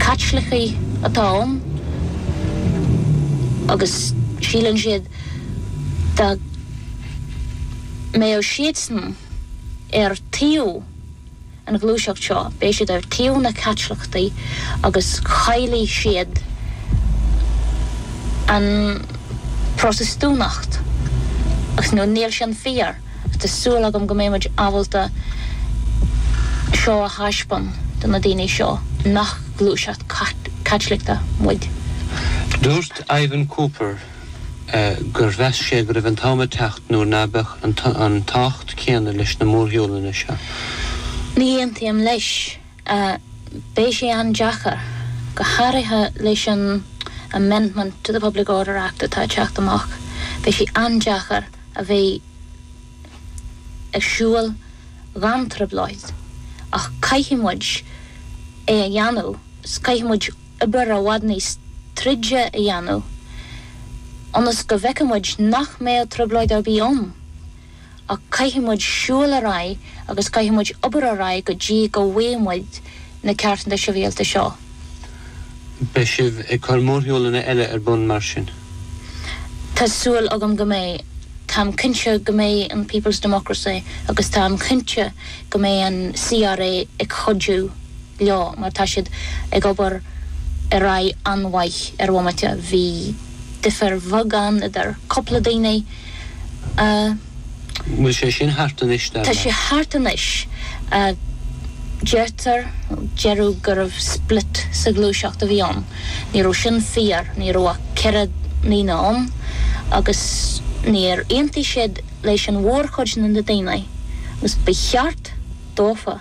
Caitlicigh atá ann agus síleann siad dá mbeadh siadsan ar taobh an ghluaiseacht seo, beidh siad ar taobh na Caitliceachtaí agus chaillfidh siad an Protastúnacht agus níl sin fíor. Tá súil agam go mbeidh muid ábalta seo a thaispeáin do na daoine seo nach gluaiseacht Caitliceach muid. Dúirt Ivan Cooper gur mheas sé go raibh an t-am ag teacht nuair ná beadh an tábhacht céanna leis na mórshiúlanna seo. Ní aontaím leis. Beidh sé an-deacair, go háirithe leis an amendment to the Public Order Act atá ag teacht amach, beidh sé an-deacair a bheith ag siúl gan trioblóid ach caithfidh muid é a dhéanamh, caithfidh muid obair i bhfad níos troide a dhéanamh ionas go bhfeicfidh muid nach mbeidh trioblóid ar bith ann. ach caithfidh muid siúl ar aghaidh agus caithfidh muid obair ar aghaidh go dtí go bhfaighidh muid na ceartanna sibhialta seo. Beidh sibh ag cur mórshiúlanna eile ar bun mar sin? Tá súil agam go mbeidh. Táim cinnte go mbeidh an People's Democracy agus táim cinnte go mbeidh an CRA ag cuidiú leo mar tá siad ag obair ar aghaidh an-mhaith ar bhomaite. Bhí difear bheag ann idir cúpla daoine, a. An bhfuil sé sin thart anois, dar leat? Tá sé thart anois. Deirtear, deireadh gurbh split sa ghluaiseacht a bhí ann. Ní raibh sin fíor, ní raibh ach ceithre ndaoine ann agus níor aontaigh siad leis an mhórchuid na na daoine agus ba cheart dófa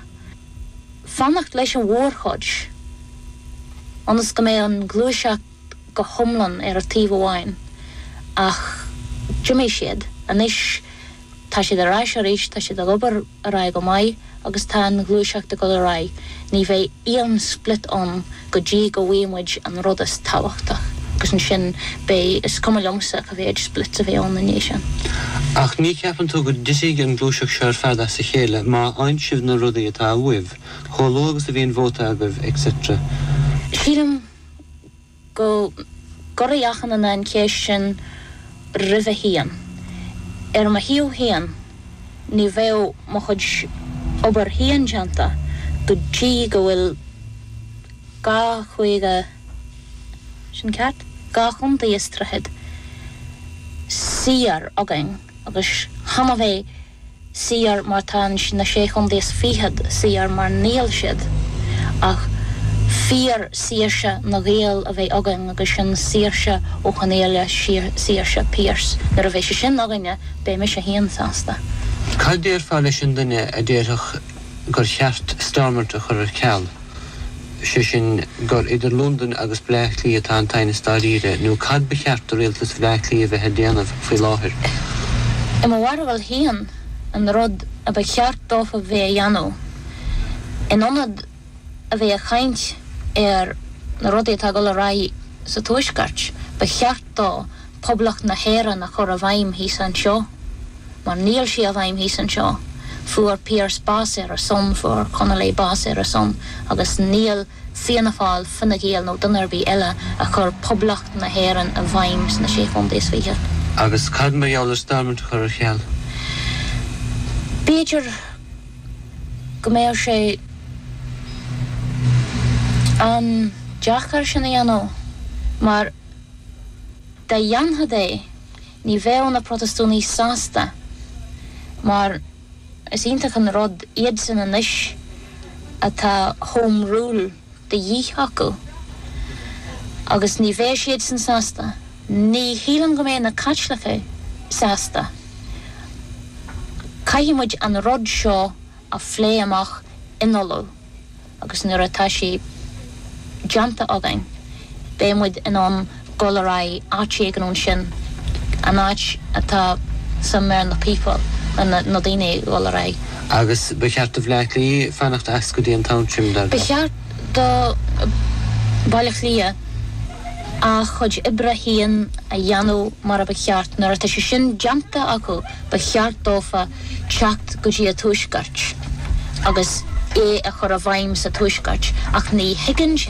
fanacht leis an mhórchuid ionas go mbeidh an ghluaiseacht go hiomlán ar taobh amháin, ach d'imigh siad. Anois tá siad ar ais arís, tá siad ag obair ar aghaidh go maith agus tá an ghluaiseacht ag dul ar aghaidh. Ní bheidh aon split ann go dtí go bhfaighidh muid an rud is tábhachtach agus ansin beidh, is cuma liomsa cá mhéid splits a bheidh ann i ndiaidh sin. Ach ní cheapann tú go dtitfidh an gluaiseacht seo ar fad as a chéile má fhaigheann sibh na rudaí atá uaibh, chomh luath agus a bhíonn vóta agaibh, et cetera? Sílim go gcuirfidh achan duine an cheist sin roimhe féin. Ar mo thaobh féin, ní bheadh mo chuid obair féin déanta go dtí go bhfuil dhá chaoga, sin ceart? dhá chontae is tríochad saor againn agus chan a bheith. saor mar tá na Sé Chontae is Fichead saor mar níl siad ach fíor saoirse na Gael a bheith againn agus sin saoirse Uí Chonghaile saoirse Pearse. Nuair a bheidh sé sin againne beidh mise féin sásta. Cad déarfá leis an duine a déarfadh gur cheart Stormont a chur ar ceal? sé sin gur idir Londain agus Bleá Cliath atá an t-aighneas dáiríre, nó cad ba cheart do rialtas Bhleá Cliath a bheith ag déanamh faoi láthair? I mo bharúil féin, an rud a ba cheart dófa a bheith ag déanamh, in ionad a bheith ag caint ar na rudaí atá ag dul ar aghaidh sa Tuaisceart, ba cheart dófa Poblacht na hÉireann a chur i bhfeidhm thíos anseo, mar níl sí i bhfeidhm thíos anseo. Fuair Pearse bás ar a son, fuair Connolly bás ar a son, agus níl Fianna Fáil, Fine Gael nó duine ar bith eile ag cur Poblacht na hÉireann i bhfeidhm sna Sé Chontae is Fiche. Agus cad mar gheall ar Stormont a chur ar ceal? B'fhéidir go mbeadh sé an-deacair sin a dhéanamh, mar. Dá ndéanfá é, ní bheadh na Protastúnaigh sásta, mar is iontach an rud iadsan anois atá Home Rule de dhíth acu, agus ní bheadh siadsan sásta. Ní shílim go mbeadh na Caitlicigh sásta. Caithfidh muid an rud seo a phlé amach in Ulaidh. agus nuair atá sé déanta againn, beidh muid in ann dul ar aghaidh áit éigin ansin, an áit atá sa mbéal na people, na daoine ag dul ar aghaidh. Agus ba cheart do Bhaile Átha Cliath fanacht as go dtí an t-am sin, dar leat? Ba cheart do Bhaile Átha Cliath a chuid oibre féin a dhéanamh mar a ba cheart. Nuair atá sé sin déanta acu, ba cheart dófa teacht go dtí an tuaisceart agus é a chur i bhfeidhm sa tuaisceart ach ní thuigeann siad